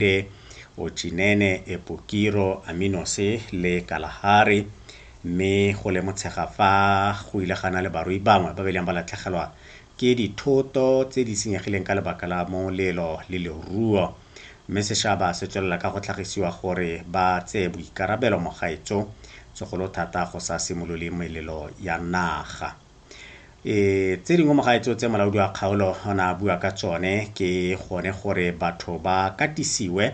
Ate, Otšinene, Epokiro, Aminose le Kalahari, mme go le motshega fa go ile ga na le barui bangwe ba ba ileng ba latlhegelwa ke dithoto tse di senyegileng ka lebaka la molelo le leruo, mme sešaba se tswelela ka go tlhagisiwa gore ba tseye boikarabelo mo gaetso, segolo thata go sa simolole melelo ya naga. E, tse dingwe mo gaetseo tse molaodi wa kgaolo o ne a bua ka tsone ke gone gore batho ba katisiwe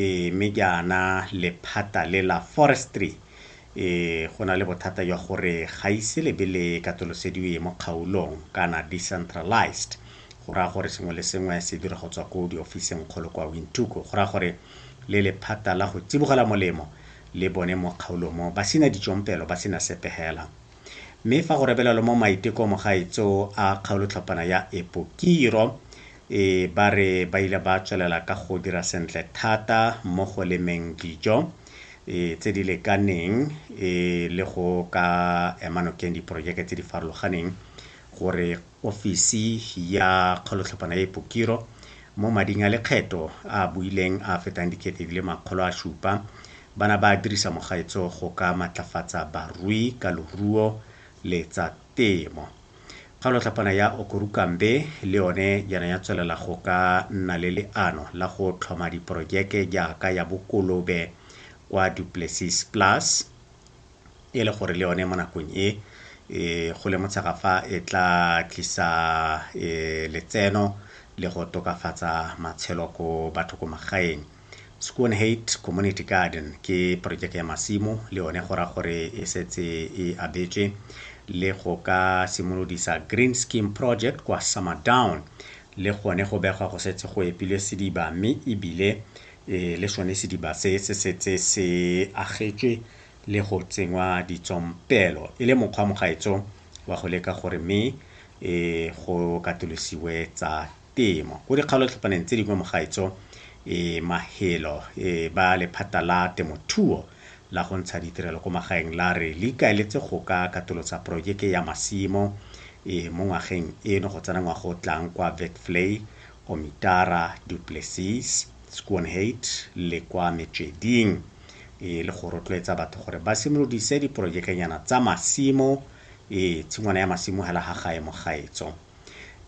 e, mme ke ana lephata le la forestry e, go na le bothata jwa gore ga ise lebe le katolosediwe mo kgaolong kana decentralized go raya gore sengwe le sengwe se dira go tswa ko diofiseng kgolo kwa wintuko go raya gore le lephata la go tsibogela molemo le bone mo kgaolong mo ba sena ditsompelo ba sena sepegela Mme fa go rebelelwa mo maitekomo gaetso a kgaolotlhophana ya Epokiro, e ba re ba ile ba tswelela ka go dira sentle thata mo go lemeng dijo e tse di lekaneng e le go ka ema nokeng diporojeke tse di farologaneng gore ofisi ya kgolotlhophana e Pokiro mo mading a lekgetho a a buileng a a fetang dikete di le makgolo a supa ba na ba dirisa mogaetso go ka matlafatsa barui ka loruo le tsa temo. Kgolotlhophana ya Okorukambe le yone yana ya tswelela go ka nna le leano la go tlhoma diporojeke jaaka ya bokolobe kwa Duplessis Plus, e le gore le yone mo nakong e e go le motshega fa e tla tlisa letseno le go tokafatsa matshelo ko batho ko magaeng. Schoonheid Community Garden ke porojeke ya masimo le yone go raya gore e setse e abetswe le go ka simolodisa Green Scheme Project kwa Summerdown le gone go begwa go setse go epilwe sediba mme ebile le sone sediba se se setse se agetswe le go tsenngwa ditsompelo e le mokgwa mogaetso wa go leka gore mme e go katolosiwe tsa temo. Ko dikgaolotlhopaneng tse dingwe mogaetso e mahelo e ba lephata la temothuo la go ntsha ditirelo ko magaeng la re le ikaeletse go ka katolosa porojeke ya masimo e mo ngwageng eno go tsena ngwaga o tlang kwa Vetvlei Omitara, Du Plessis, Schoonheid le kwa metsweding e le go rotloetsa batho gore ba simolodise diprojekenyana tsa masimo e tshingwana ya masimo hela ha gae mo gaetso.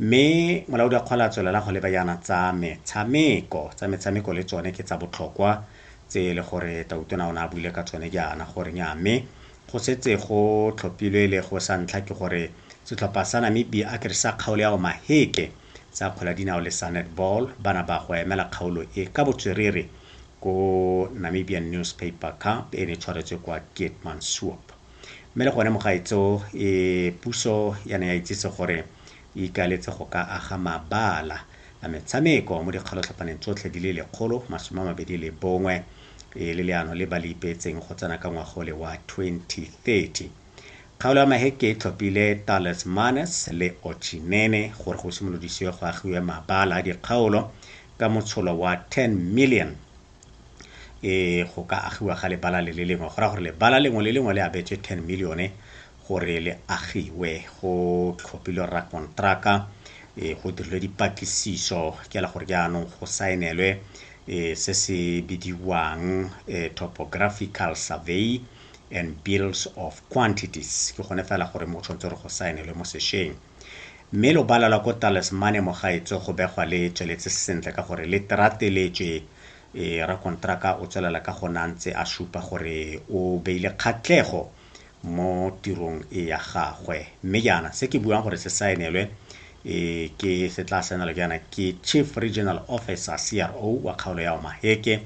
Mme molaodi wa kgwele a tswelela go leba yana tsa metshameko. Tsa metshameko le tsone ke tsa botlhokwa tse e le gore Tautona o ne a buile ka tsone jaana gore nya mme go setse go tlhophilwe le go sa ntlha ke gore setlhopha sa Namibia a ke re sa kgaolo ya Omaheke tsa kgwele ya dinao le sa netball ba na ba go emela kgaolo e ka botswerere ko Namibian Newspaper Cup e ne tshwaretswe kwa Keetmanshoop. Mme le gone mogaetso e puso ya ne ya itsise gore e ikaeletse go ka aga mabala a metshameko mo dikgalotlhapaneng tsotlhe di le lekgolo masome a mabedi le bongwe e le leano le ba le ipeetseng go tsena ka ngwaga ole wa 2030. Kgaolo ya Maheke e tlhophile Thales Manes le Ochi Nene gore go simolodisiwe go agiwe mabala a dikgaolo ka motsholo wa 10 million e go ka agiwa ga lebala le le lengwe go ra gore lebala lengwe le lengwe le abetswe 10 milione gore le agiwe go tlhophile rra kontraka e go dirilwe dipatlisiso ke la gore jaanong go saenelwe e se se bidiwang e topographical survey and bills of quantities ke gone fela gore mo tshwanetse re go saenelwe mo sešweng mme lobala la ko talismane mogaetso go begwa le tsweletse sentle ka gore le terateletswe e rakontraka o tswelela ka gona ntse a supa gore o beile kgatlego mo tirong e ya gagwe mme jaana se ke buang gore se saenelwe e ke se tla saenelwa jaana ke chief regional officer cro wa kgaolo ya omaheke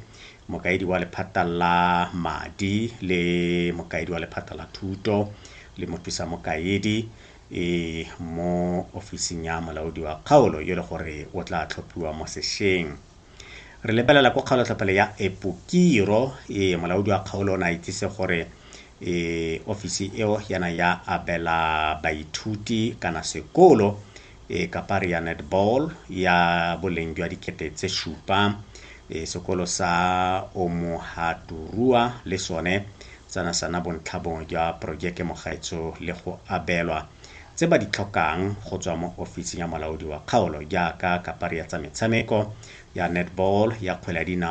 mokaedi wa lephata la madi le mokaedi wa lephata la thuto le mothusa mokaedi e mo ofising ya molaodi wa kgaolo yo le gore o tla tlhophiwa mo sešeng re lebelela ko kgaolotlhophelo ya epokiro e molaodi wa kgaolo o ne a itsise gore e ofisi eo yana ya abela baithuti kana sekolo e kapari ya netball ya boleng jwa dikete tse supa e sekolo sa Omohaturua le sone tsana sana bontlha bongwe jwa porojeke mogaetso le go abelwa tse ba di tlhokang go tswa mo ofising ya molaodi wa kgaolo jaaka kapari ya tsa metshameko ya netball ya kgwele ya dinao